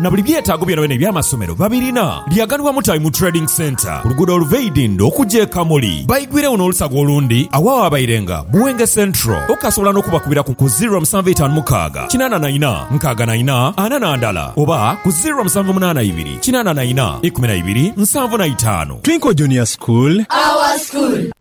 na buli byetaago byonabyona eby'amasomero babirina. Lyaganibwa Mutabi mu Trading Centre ku luguudo oluva e Idindho okuja e Kamuli. Baigwiregho n'olusaga olundi agho awaabairenga Buwenge Central. Okasobola n'okubakubira ku ku ziro musanvu itaanu mukaaga kinaana na ina nkaaga na ina ana na ndala oba ku ziro musanvu munaana ibiri kinaana na ina ikumi na ibiri nsanvu na itaanu. Twinkle Junior School. Our School.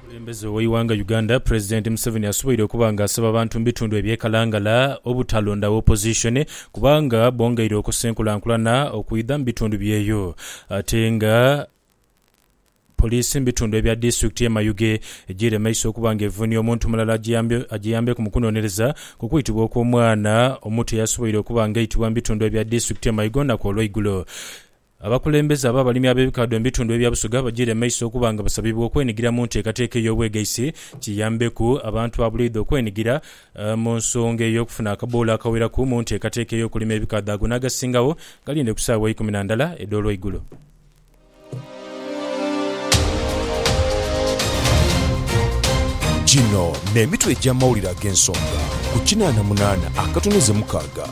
Omukulembeze w'eighanga Uganda President Museveni asoboire okuba nga asaba abantu mu bitundu ebye Kalangala obutalondagho opposition kubanga bongeire okosa enkulankulana okwidha mu bitundu byeyo ate nga Police mu bitundu ebya disitulikiti ye Mayuge ejiire mu maiso okuba nga evunia omuntu mulala agiyambeku mu kunonereza ku kwitibwa okw'omwana omuto eyasoboire okuba nga aitibwa mu bitundu ebya disitulikiti ye Mayuge olunaku olweigulo. Abakulembeze ab'abalimi ab'ebikaadho mu bitundu ebya Busoga bajiire mu maiso okuba nga basabibwa okwenigira mu nteekateeka ey'obwegaisi kiyambeku abantu ba buleidha okwenigira mu nsonga ey'okufuna akaboolo akaweraku mu nteekateeka ey'okulima ebikaadho ago n'agasingagho galinde ku saawa ikumi na ndala edh'olweigulo. Gino n'emitwe egy'amawulire ag'ensonga ku kinaana munaana akatoneze mukaaga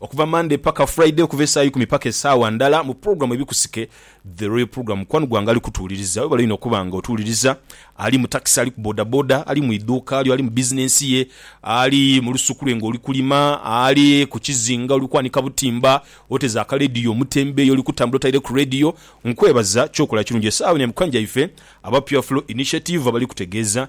Okuva Monday paka Friday okuva esaawa ikumi paka esaawa ndala mu program Ebikusike The Royal Program mukwano gwange ali kutuwuliriza webale inho okuba nga otuwuliriza ali mu taxi ali ku boda boda ali mu idhuuka lyo ali mu business ye ali mu lusuku lwe nga oli kulima ali ku kizinga oli kwanika butimba oteze aka radio omutembeeyi oli kutambula otaire ku radio nkwebaza kyokola kirungi esaawa eno ya mukanja ife aba Pure Flow Initiative abali kutegeeza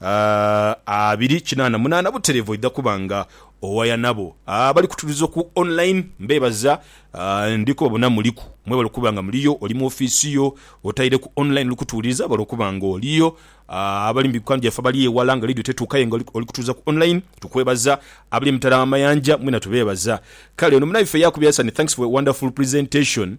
A abiri kinaana munaana butereevu oidha kuba nga owaya nabo. A abali kutuliza ku online mbeebaza. A ndi kubabona muliku. Mwebale okuba nga muliyo, oli mu ofiisi yo otaireku online oli kutuwuliriza, webale okuba nga oliyo. A abali mu bikwano byaffe abali eghala nga leediyo tetuuka aye nga oli oli kutuwuliriza ku online tukwebaza. Abali emitala w'amayanja mwena tubeebaza. Kale ono munaife Yakubu Yasani thanks for a wonderful presentation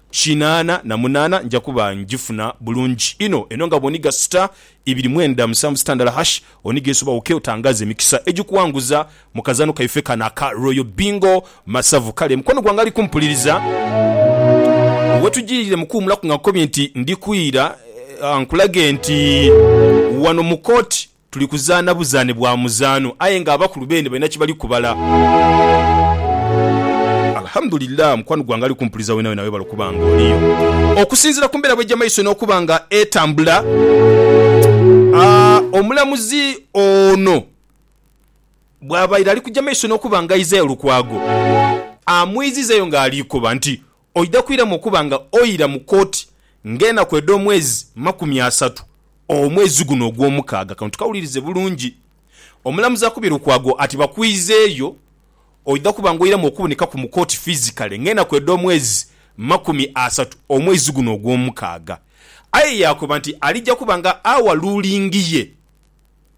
kinaana na munaana nja kuba ngifuna bulungi inho. Eno nga bw'onigha sita ibiri mwenda musanvu sitandala hash, onigha ensobi awoke otangaaze emikisa egikuwanguza mu kazaano kaife kano aka Royal Bingo Masavu. Kale mukwano gwange ali kumpuliriza, wetujiirire mu kuwumulaku nga nkukobye nti ndi kwira nkulage nti wano mu kooti Tuli kuzaana buzaane bwa muzaano aye nga abakulu beene balina kyebali kubala. Alhamdulillah mukwano gwange ali kumpuliza wenawena webale okuba nga oliyo. Okusinzira ku mbeera bwejja maiso n'okuba nga etambula, omulamuzi ono bwabaire ali kujja maiso n'okuba nga Isaiah Lukwago amwizizayo nga alikoba nti oidha kwiramu okuba nga oira mu kooti ng'enaku edh'omwezi makumi asatu omwezi guno ogw'omukaaga. Kano tukawulirize bulungi. Omulamuzi akubye Lukwago ati bakwizeeyo oidha kuba nga oiramu okubonekaku mu kooti fizikale ng'enaku edh'omwezi makumi asatu omwezi guno ogw'omukaaga. Aye yaakoba nti alija kuba nga awa luulingi ye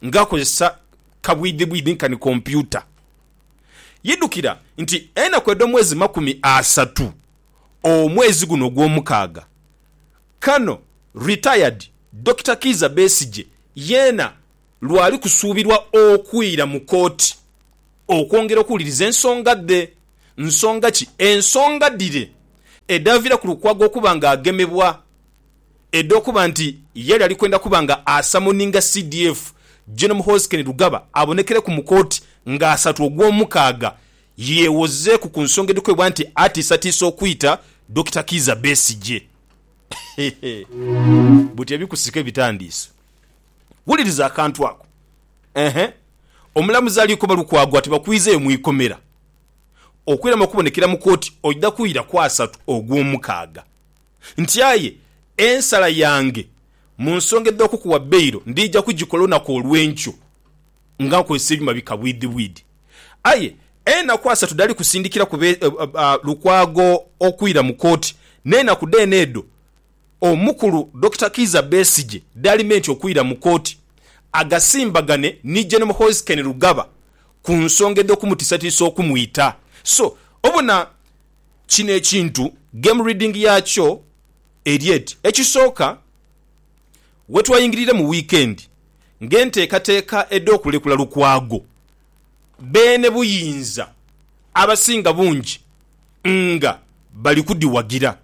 ng'akozesa kabwidhibwidhi nkani kompyuta. Yidhukira nti enaku edh'omwezi makumi asatu omwezi guno ogwomukaaga. Kano Retired Dokita Kiiza Besigye yeena lwali kusuubirwa okwira mu kooti okwongera okuwuliriza ensonga dhe. Nsonga ki? Ensonga dhire edhaviiraku Lukwago okuba nga agemebwa edh'okuba nti yali ali kwenda kuba nga asamoninga CDF, Gen Muhoozi Kainerugaba abonekereku mu kooti nga asatu Ogwomukaaga yeewozeeku ku nsonga edhikweebwa nti atiisatiisa okwita Dokita Kiiza Besigye. Buti ebikusika ebitandiise. Wuliriza akantu ako. Eehh. Omulamuzi alikoba Lukwago ati bakwiizeeyo mu ikomera. Okwirama okubonekera mu kooti oidha kuwulira ku asatu Ogwomukaaga. Nti aye ensala yange mu nsonga edh'okukuwa bailo ndija kugikola olunaku olw'enkyo nga nkozesa ebyuma bikabwidhibwidhi. Aye enaku asatu dhali kusindikira kube Lukwago okwira mu kooti n'enaku dheene edho omukulu Dokita Kiiza Besigye dhali menti okwira mu kooti agasimbagane ni Gen Muhoozi Kainerugaba ku nsonga edh'okumutisatiisa okumwita. So obona. Kino ekintu game reading yakyo eri eti, Ekisooka, wetwayingirire mu wiikendi ng'enteekateeka edh'okulekula Lukwago, beene buyinza abasinga bungi nga bali kudhiwagira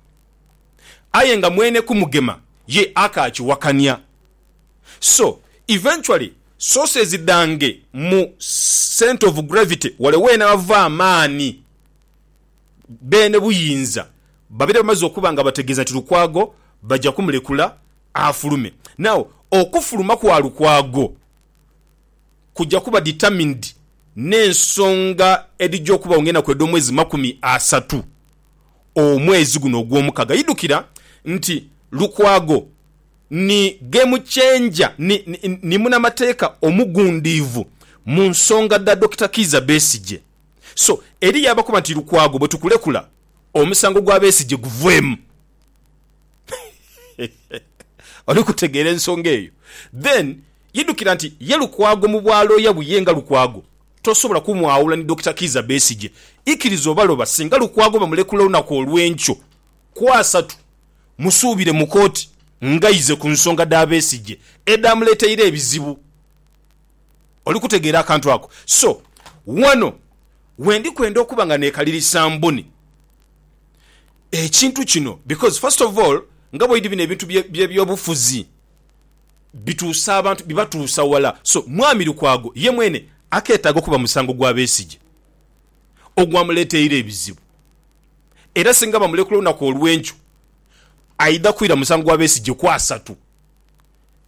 aye nga mwene Kumugema ye akaakiwakania. So, eventually sources dhange mu centre of gravity wale weenava amaani. Beene buyinza babeere bamaze okuba nga bategeeza nti Lukwago baja kumulekula afulume. Now okufuluma kwa Lukwago kuja kuba determined n'ensonga edhija okubagho ng'enaku edh'omwezi makumi asatu omwezi guno ogw'omukaga. Idhukira nti Lukwago ni game changer, ni ni ni munamateeka omugundiivu mu nsonga dha Dokita Kiiza Besigye. So eriyo abakoba nti Lukwago bwetukulekula omusango gwa Besigye guveemu. Oli kutegeera ensonga eyo? Then yidukira nti ye Lukwago mu bwa looya buye nga Lukwago tosobola kumwawula ni Dokita Kiiza Besigye. Ikiriza obaloba singa Lukwago bamulekula olunaku olwenkyo ku asatu musuubire mu kooti ngaize ku nsonga dha Besigye edhamuleteire ebizibu. Oli kutegeera akantu ako? So, ghano we ndi kwenda okuba nga neekalirisa mbuni ekintu kino, because first of all, nga bw'oidhi bino ebintu by'ebyobufuzi bituusa abantu, bibatuusa ghala. So, Mwami Lukwago ye mwene akeetaaga okuba musango gwa Besigye ogwamuleeteire ebizibu. Era singa bamulekula olunaku olw'enkyo, aidha kwira musango gwa Besigye ku asatu.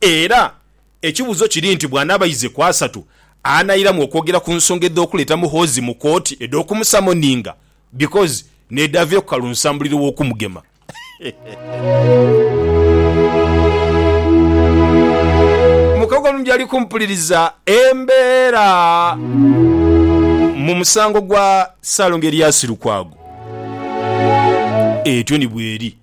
Era ekibuzo kiri nti bwanaaba aize ku asatu, anairamu okwogera ku nsonga edhokuleeta Muhoozi mu kooti edhokumusamoninga because nedhaavireku Kalunsambulira owokumugema. Mukago omubbi ali kumpuliriza embeera mu musango gwa Ssaalongo Erias Lukwago. Etyo ni bweri.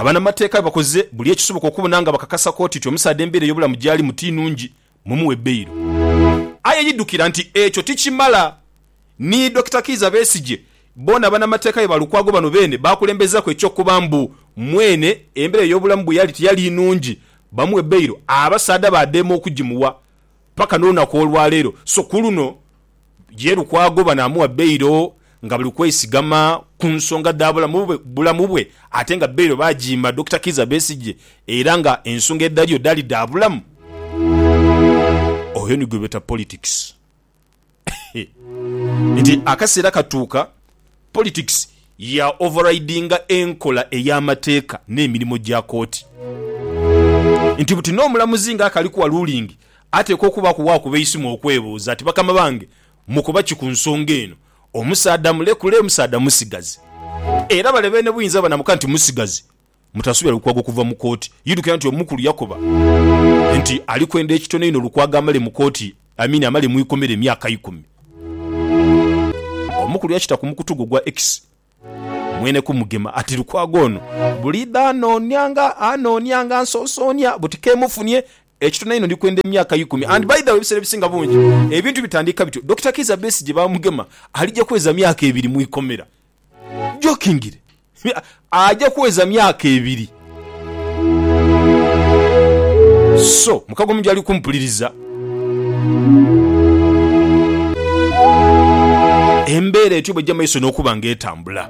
Abanamateeka bakoze buli ekisoboka okubona nga bakakasa kooti nti omusaadha embeera ey'obulamu gy'alimu ti nnungi mumuwe beyiro. Aye yidhukira nti ekyo tikimala. Ni Dokita Kiiza Besigye boona banamateeka be ba Lukwago bano beene baakulembezaaku eky'okuba mbu mwene embeera ey'obulamu bwe yali tiyali nnungi bamuwe beyiro abasaadha baadheema okugimuwa Paka n'olunaku olwa leero, so ku luno, ye Lukwago bano amuwa bailo nga bali kwesigama ku nsonga dha bulamu bwe ate nga bailo baagiima Dokita Kiiza Besigye era nga ensonga edhaliyo dhaali dha bulamu. Oyo ni gwebeeta politics. nti akaseera katuuka politics ya overridinga enkola ey'amateeka n'emirimo gya kooti. Nti buti n'omulamuzi nga akali kuwa ruling ateekwa okubaaku waakuba eisimu okwebuuza ati bakama bange mukoba ki ku nsonga eno? Omusaadha mulekule, omusaadha musigazi. Era bale beene buyinza banamuka nti musigazi Mutasubira Lukwago kuva mu kooti. Idhukira nti omukulu yakoba nti ali kwenda ekitono inho Lukwago amale mu kooti, I mean amale mu ikomera emyaka ikumi. Omukulu yakita ku mukutu gwo ogwa X mwene ku Mugema ati Lukwago ono buliidho anoonia nga anoonia nga ansonsoonia buti kemufunie ekitono inho ndi kwenda emyaka ikumi and by the way ebisera ebisinga bungi ebintu bitandiika bityo Dokita Kiiza Besigye ba Mugema ali gya kweza myaka ebiri mu ikomera Jokingire aja kuweza myaka ebiri. So, mukago mu gyali kumpuliriza. Embeera etyo bw'ejja mu maiso n'okuba nga etambula.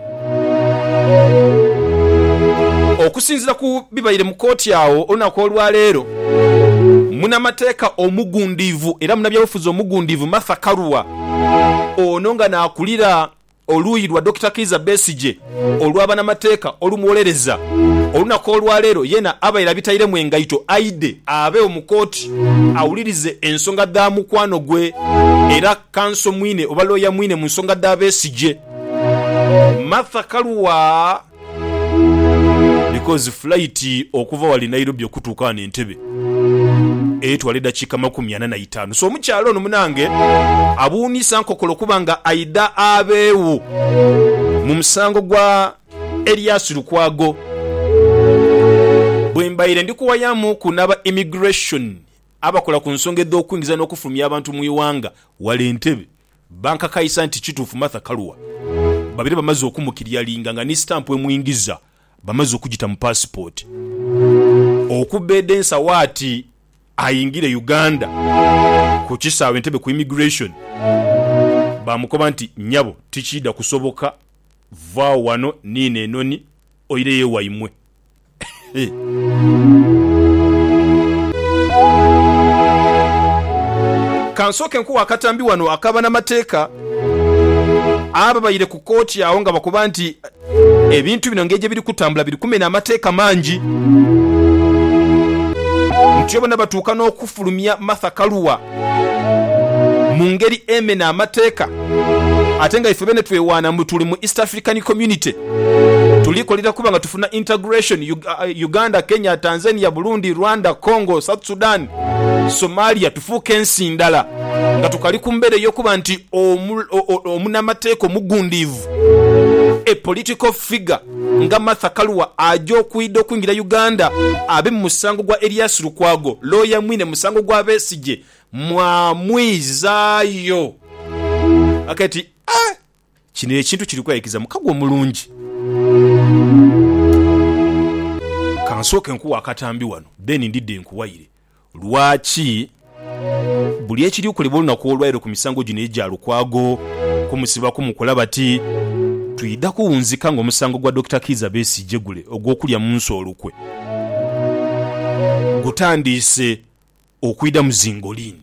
Okusinzira ku bibaire mu kooti agho olunaku olwaleero, munamateeka omugundiivu era munabyabufuzi omugundiivu Martha Karua, ono nga n'akulira Oluuyi lwa Dokita Kiiza Besigye olwa banamateeka olumuwolereza olunaku olwaleero yeena abaire abitairemu engaito aidhe abeewo mu kooti awulirize ensonga dha mukwano gwe era kanso mwine oba looya mwine mu nsonga dha Besigye Martha Karua. Because flight okuva wali Nairobi okutuuka wano Entebbe etwala edakiika makumi ana na itaanu so omukyala ono munange abuunisa nkokolo kuba nga aidha abeegho mu musango gwa Elias Lukwago. Bwembaire ndi kuwayamuuku n'aba Immigration abakola ku nsonga edh'okwingiza n'okufulumya abantu mu ighanga wali Entebbe, Bankakaisa nti kituufu Martha Karua babeire bamaze okumukilyalinga nga ni sitampu emwingiza bamaze okugita mu paasipooti. Okubbedha ensawo ati ayingire Uganda, ku kisaawe Entebbe ku Immigration baamukoba nti, Nyabo tikiidha kusoboka, vaawo wano niino enhonhi oireyo ewaimwe. Ka nsooke nkuwe akatambi wano aka banamateeka ababaire ku kooti agho nga bakoba nti ebintu bino engeri gyebiri kutambula biri kumena amateeka mangi. Ntyo bona batuuka n'okufulumya Martha Karua mu ngeri emena amateeka ate nga ife bene twewaana mbu tuli mu East African Community. Tuli kolera kuba nga tufuna integration, Uganda, Kenya, Tanzania, Burundi, Rwanda, Congo, South Sudan, Somalia tufuuke ensi ndala nga tukali ku mbeera ey'okuba nti omunamateeka omugundiivu, a political figure, Nga Martha Karua aja okwidha okwingira Uganda abe mu musango gwa Erias Lukwago, looya mwine musango gwa Besigye mwamwizaayo. Kati kino ekintu kiri kweyikiza mu kago omulungi. Kansooke nkuwe akatambi wano then ndidhe nkuwayire. Lwaki buli ekiri okolebwa olunaku olwaire ku misango gino egya Lukwago kumusiba kumukola bati? Twidha kuwunzika nga omusango gwa Dokita Kiiza Besigye gule ogw'okulya mu nsi olukwe gutandiise okwidha mu zi ngoliini.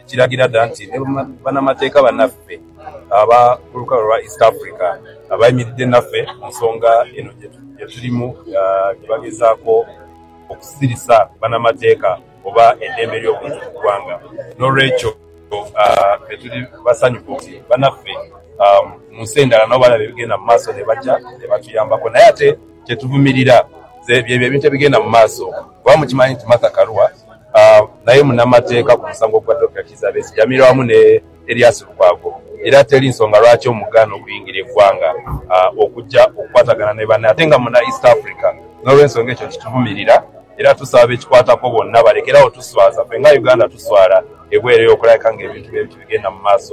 ekiragira dha nti ni banamateeka banaffe aba ku lukalu lwa East Africa abayimiridde naffe ku nsonga eno gyetulimu gyebagezaako okusirisa banamateeka oba edembe lyobuntu mu gwanga nolwekyo ffe tuli basanyufu nti banaffe mu nsi endala nabo balaba ebigenda mu maaso nebaja nebatuyambako naye ate kyetuvumirira zebyo ebintu ebigenda mu maaso kuba mukimanyi nti Martha Karua Naye munamateeka ku musango gwa Dokita Kizza Besigye amirwa wamu ne Erias Lukwago era teri nsonga lwaki omugaana okuyingira egwanga okujja okukwatagana ne banne ate nga muna East Africa nolwensonga ekyo kituvumirira era tusaba bekikwatako bonna balekere agho tuswaza ffe nga Uganda tuswala ebwereyo okulabika nga ebintu bwebiti bigenda mu maaso.